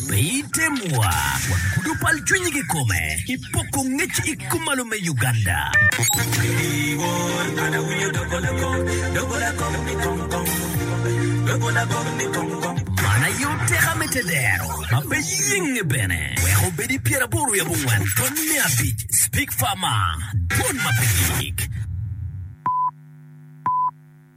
Pe item wa, wagudo pal cwinyi ki kome, ipoko ngec i kumalo me Uganda. Iwor kan awinyo dogo lago, dogo lago ni kong kong, dogo lago ni kong kong. Man aye oteka me tedero ma pe yenge bene, weko obedi pyeraboro i abongwen tony me abic, Speak Far Ma, dwon ma pe gik.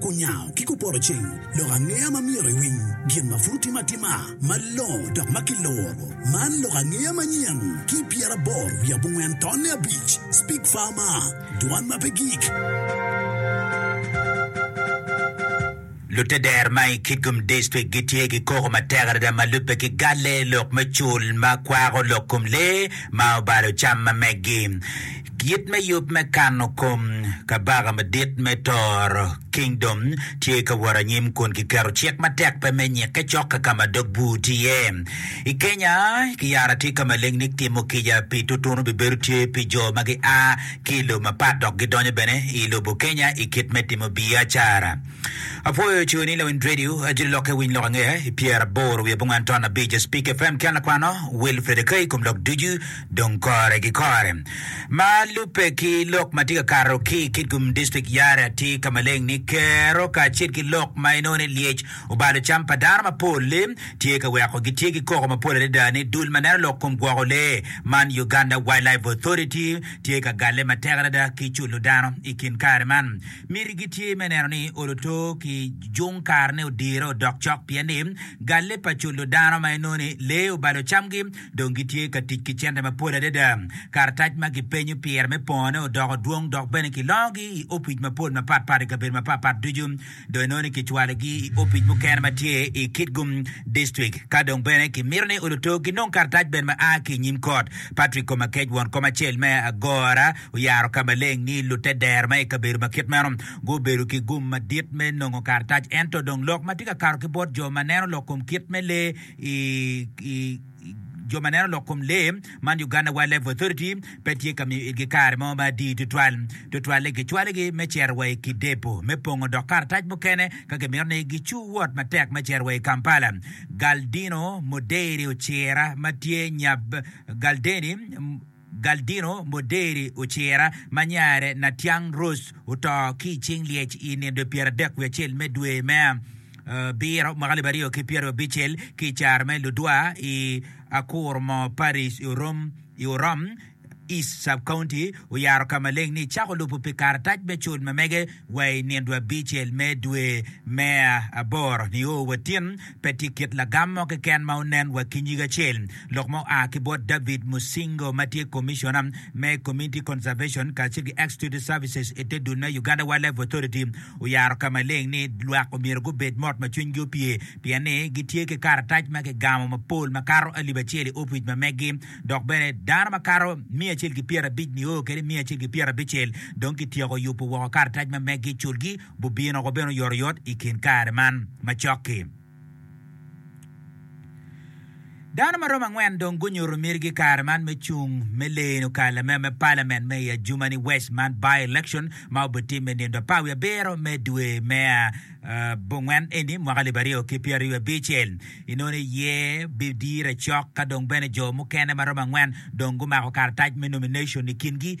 Kunyango ki kuporo ceng lok angeya ma myero iwiny gin ma pud otim atima malongo dok ma kiluro. Man lok angeya manyen ki pyeraboro wiye abongwen tonne abic, Speak Farmer, Dwan ma pe gik. Luteder ma i Kitgum District gitye ki koko matek adada ma lubbe ki galle lok me cul ma kwako lok kom lee ma obalo cam ma meggi. Kit me yub me kano kom Kabaka Madit me Toro, Kingdom, tye ka wot anyim kun kiketo cik matek pe me nyikke cok ka ka ma dog bur tye iye. I Kenya, kiyara tye ka ma lengnik timo kica pi tutunu bibedo tye pi jo ma gia ki i lobo mapat dok gidonyo bene i lobo Kenya i kit me timo biacara. Apwoyo coyo ni Lawiny Radio, Ajoli Lokke Winy Lok Ange, i pyeraboro wiye abongwen ton abic, Spik FM, Kyan Lakwano, Wilfred Akai, i kom lok ducu. Dong kore ki kore ma lubbe ki lok ma tye ka kato ki i Kitgum District, Yare atir ka maleng ni Kerro kacel ki lok ma inongo ni lyec obalo cam pa dano mapol-li tye ka weko gitye ki koko mapol adada ni dul ma neno lok kom gwoko lee man Uganda Wildlife Authority tye ka galle matek adada ki culo dano i kin kare man. Mitigi tye me neno ni oluto ki jung karene odire odok cok pien ni galle pa culo dano ma inongo ni lee obalo camgi dong gitye ka tic ki cente mapol adada. Karatac ma kipenyo pire me pongone odoko dwong dok bene kilongogi i opic mapol mapatpat i kabedo mapatpat ducu. Dong inongo ni kicwalogi i opic mukene ma tye i Kitgum Dictrik. Ka dong bene kimito ni oluto ginong karatac bene ma a ki i nyim kot, Patrick Komakec, won kom acel me agora, oyaro ka maleng ni lute dero ma i kabedo ma kit meno gubedo ki gum madit me nongo karatac. Ento dong lok ma tye ka kato ki bot jo ma neno lok kom kit me lee, i jo ma neno lok kom lee man, Uganda Wildlife Authority pe tye ka miyo itgi kare mo ma adii tutwal. Tutwal-li gicwalogi me cito wa i kidepo me pongo dok karatac mukene ka gimito ni gicu wot matek me cito wa i Kampala. Galdino Moderi Ocira ma tye nyab Galdeni, Galdino Moderi Ocira ma nyare Natiang Rose oto ki i cing lyec i nindo pyeradek wiye acel me dwe me abiro mwaka alip aryo ki pyeraryo abicel ki i caro me ludwa i Akurmo Parish i Orom East Sub-County oyaro ka maleng ni cako lubo pi karatac me cul ma mege wa i nindo abicel me dwe me aboro nio wa tin Pe tye kit lagam mo keken ma onen wa ki nyig acel. Lok ma oa ki bot David Musingo ma tye Commissioner me Community Conservation kacel ki Executive Services i te dul me Uganda Wildlife Authority oyaro ka maleng ni lwak omyero gubed mot ma cwinygi opye pien ni gitye ki karatac ma kigamo mapol ma kato alip acel i opic ma meggi dok bene dano ma kato miya acel ki pyerabic nio kede miya acel ki pyerabicel dong kityeko yubo woko karatac ma meggi, culgi. gubino woko bene oyotoyot i kin kare man macok-ki. Dano ma romo angwen dong gunyuto mitigi kare man me cung me leno ka lamego me palament me i ajumani wec man by-election ma obitimme nindo pa wi abiro me dwe me abongwen eni mwaka alip aryo ki pyeraryo abicel. Inoni aye bidire cok ka dong bene jo mukene ma romo angwen dong gumako karatac me nomination i kingi.